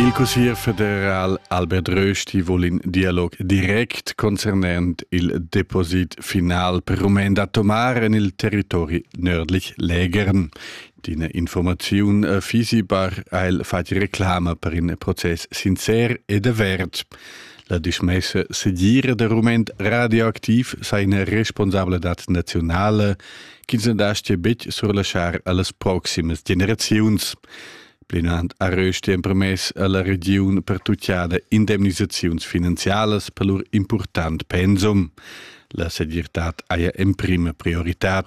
Il Cussier federal Albert Rösti vul in dialog direct concernent il Deposit final per Rumenda tomar en il territori nördlich Lägern. Dine informaziun äh, fisi par ha el fati reclama per in process sincer ed avert. La dismessa segira da rument radioactiv sei ina responsabladad naziunala ch'ins andastia betg surlaschar allas proximas generaziuns. Plinant arresti empromess alla regiun per tucciada indemnisaziuns finanzialas per lur important pensum. La segirtad haja emprima prioritad.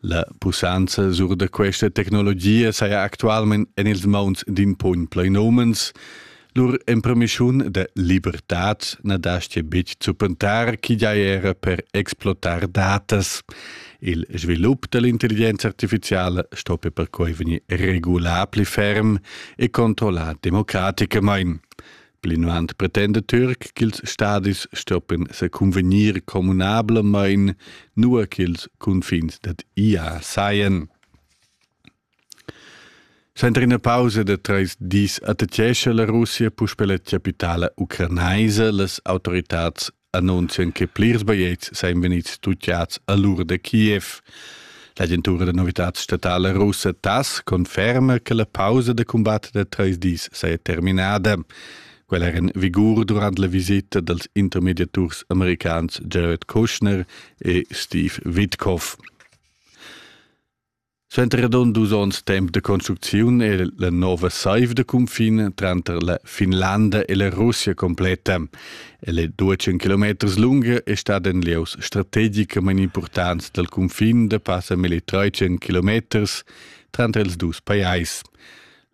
La pussanza sur da questa tecnologia saja actualmain en ils mauns d'in pugn plain umens. Lur empermischun da libertad na dastia betg zuppentar chi giai era per explotar datas. Il svilup da l'intelligenza artificiala stoppi perquai vegnir regulà pli ferm e controllà democraticamain. Plinavant pretenda Türk ch'ils stadis stoppin se convegnir communablemein, nua ch'ils cunfins dad IA saien. Senter ina pausa de treis dis attachescha la Russia puspele capitala ucranaisa las autoritats annunzien che plirs bajetgs sein vegnids tutgiads a l'ur da Kiev. L'agentura da novitads statala russa TASS conferma che la pausa da combat da treis dis saja terminada. Quella era in vigur durant la visita dals intermediaturs americans Jared Kushner e Steve Witkoff. Suenter radund dus onns temp de construcziun è la nova saiv de cunfin tranter la Finlanda e la Russia completa. El è 12 kilometers lunga e stat en lieus strategicamain importants dal cunfin de passa milli 13 kilometers tranter els dus pajais.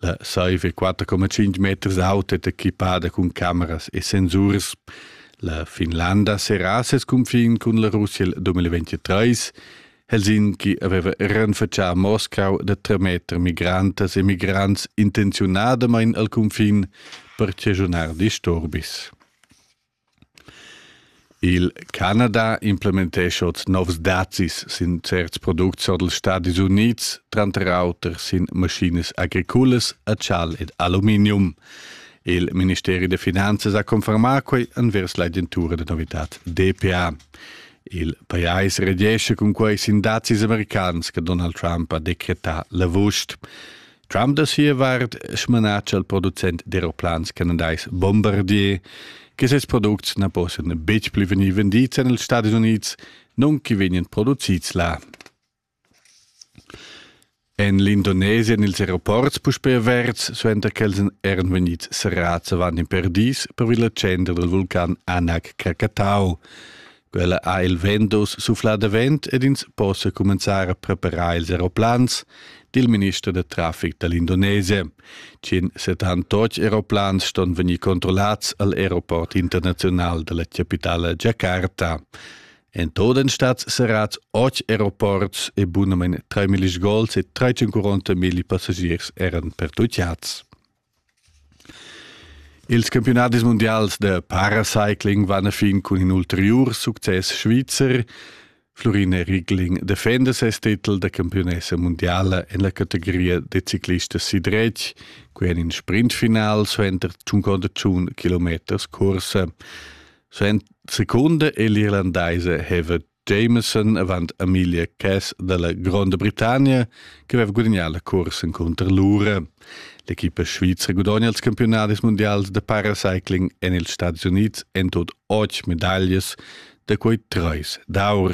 La saiv è 4,5 meters auta ed equipada cun cameras e sensurs. La Finlanda serà ses cunfin cun la Russia 2023 Helsinki chi aveva renfatschà Moscau da trametter migrantas e migrants intenziunadamain al cunfin per cheschunar disturbis. Il Canada implementescha oz novs dazis sin certs products or dals Stadis Unids, tranter auter sin maschinas agriculas, atschal ed aluminium. Il ministeri da finanzas ha confermà quai envers l'agentura da novitad DPA. Il pajais regescha cun quei sin dazis americans che Donald Trump ha decretà l'avust. Trump da sia vart smanatscha al producent d'aeroplans canadais Bombardier che ses products na possono betg pli vegnir vendids en ils Stati Unids, non che vegnan producids là. En l'Indonesia èn ils aeroports puspè averts, suenter ch'els eran vegnids serrads avant in per dis pervi dal center dal vulcan Anak Krakatau. Quella ha il vent oz suflà davent ed ins possa cumenzar a preparar ils aeroplans, dil minister da traffic da l'Indonesia. 178 aeroplans ston vegnir controllats al aeroport internaziunal da la chapitala Jakarta. En tot den stat serrats 8 aeroports e bunamein 3.000 gols e 340.000 passagiers eran pertucciats. Ils campionadis mundials de paracycling van a fin cun in ulteriur success svizzer. Florine Rigling defenda ses titel da campionessa mundiala en la categoria de ciclista sidretg, quei en in sprintfinal suenter 51 km corsa. Sen secunda e l'Irlandaise heva Jameson avant Amelia Cass dalla Gronda Britannia che aveva gudagnà la cursa encunter l'ura. L'equipa svizra gudogna ils campiunadis mundials de paracycling en ils Stati Units en tot 8 medaglias, da quei 3 d'aur.